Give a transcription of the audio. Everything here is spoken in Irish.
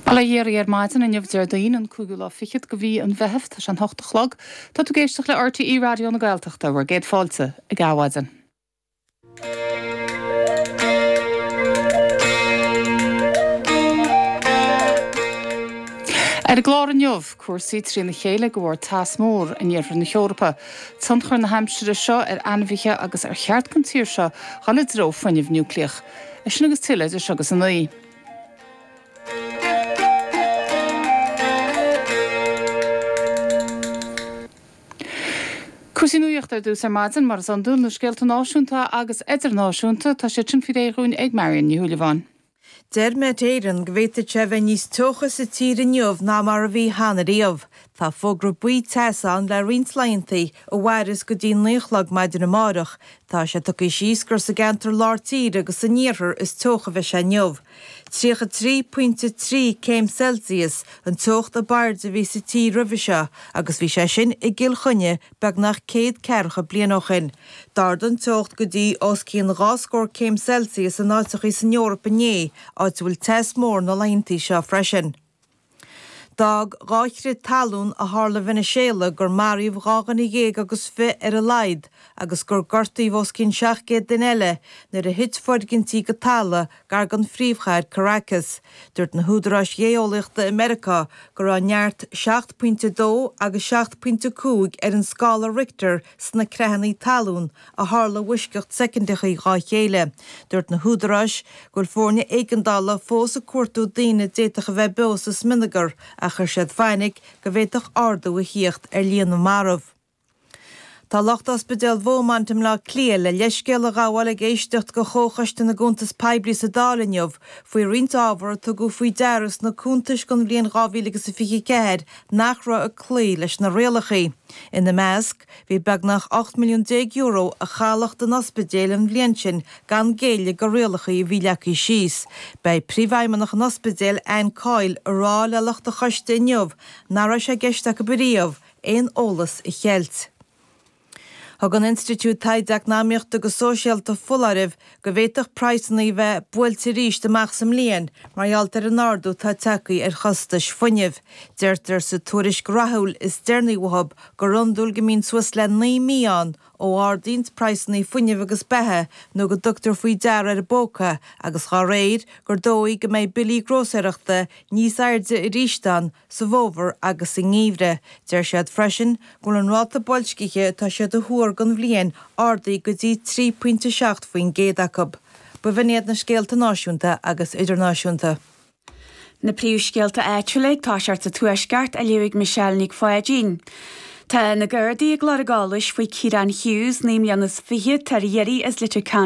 Bail ó Dhia oraibh ar maidin inniu Déardaoin an cúigiú lá fichead de mhí an Mheithimh, tá sé an t-ocht a chlog. Tá tú ag éisteacht le RTÉ Raidió na Gaeltachta, bhur gcéad fáilte ag Adhmhaidin. Ar an gclár inniu, cúrsaí trína chéile de bharr teas mór in iarthar na hEorpa, tionchar na haimsire seo ar ainmhithe agus ar cheart don tír seo dhul i dtreo fuinnimh núicléach. É sin agus tuilleadh idir seo agus a naoi. Cúrsaí nuachta ar dtús ar maidin, mar is iondúil, na scéalta náisiúnta agus idirnáisiúnta, tá siad sin faoi réir dhúinn ag Marion Ní Shúilleabháin. Deir Met Éireann go bhféadfaidh sé a bheith níos teocha sa tír inniu ná mar a bhí cheana riamh. Tá fógra buí teasa ann le roinnt laethantaí, a mhairfeas go dtí naoi a chlog maidin amárach. Tá sé tugtha síos gur sa gceantar lár tíre agus san iarthar is teocha a bheidh sé inniu. Tríocha a trí pointe a trí céim Celsius an teocht ab airde a bhí sa tír roimhe seo agus bhí sé sin i gCill Chainnigh beagnach céad ceathracha bliain ó shin. D'ardaigh an teocht go dtí os cionn dhá scór céim Celsius in áiteachaí san Eoraip inné, áit a bhfuil teas mór na laethantaí seo freisin. D'fhág dhá chrith talún a tharla i Veiniséala gur maraíodh dhá dhuine dhéag agus fiche ar a laghad agus gur gortaíodh os cionn seacht gcéad duine eile nuair a thit foirgintí go talamh gar don phríomhchathair Caracas. Dúirt na húdaráis ghéeolaíochta i Meiriceá go raibh neart seacht pointe a dó agus seacht pointe a cúig ar an scála Richter sna creathanna talún a tharla i bhfoisceacht soicindeacha dhá chéile. Dúirt na húdaráis go bhfuil foirne éigeandála fós ag cuartú daoine a d'fhéadfadh a bheith beo sa smionagar ach chuir siad fainic go bhféadfadh ardú a theacht ar líon na marbh. Tá lucht ospidéal Bheaumont i mBleá Cliath le leithscéal a ghabháil ag éisteacht de Chomhchoiste na gCuntas Poiblí sa Dáil inniu faoi roinnt ábhar a tugadh faoi deara sna cuntais don bhliain 2024 nach raibh ag cloí leis na rialacha. Ina measc, bhí beagnach €18 milliún a chaith lucht an ospidéil an bhliain sin gan géilleadh do rialacha a bhí leagtha síos. Beidh Príomhfheidhmeannach an Ospidéil, Anne Coyle, ag rá le lucht an choiste inniu nach raibh sé i gceist acu riamh aon eolas a cheilt. Thug an Institiúid Taighde Eacnamaíochta agus Sóisialta foláireamh go bhféadfadh praghsanna a bheith buailte arís amach sa mbliain mar gheall ar an ardú atá tagtha ar chostais fuinnimh. Deirtear sa tuairisc ráithiúil is deireanaí uathu gur iondúil go mbíonn suas le naoi mí ann ó ardaíonn praghsanna fuinnimh agus beatha nó go dtugtar faoi deara ar an bpóca agus dá réir, gur dóigh go mbeidh billí grósaeireachta níos airde arís ann sa bhfómhar agus sa ngeimhreadh. Deir siad freisin go bhfuil an ráta boilscithe atá siad a thuar don bhliain ardaithe go dtí 3 pointe 7 faoin gcéad acu. B'in iad na scéalta náisiúnta agus idirnáisiúnta. Na príomhscéalta áitiúla ag toiseacht sa Tuaisceart, á léamh ag Michelle Nic Pháidín. Tá na Gardaí ag lorg eolais faoi Kieran Hughes, naoi mbliana is fiche, atá ar iarraidh as Leitir Ceanainn.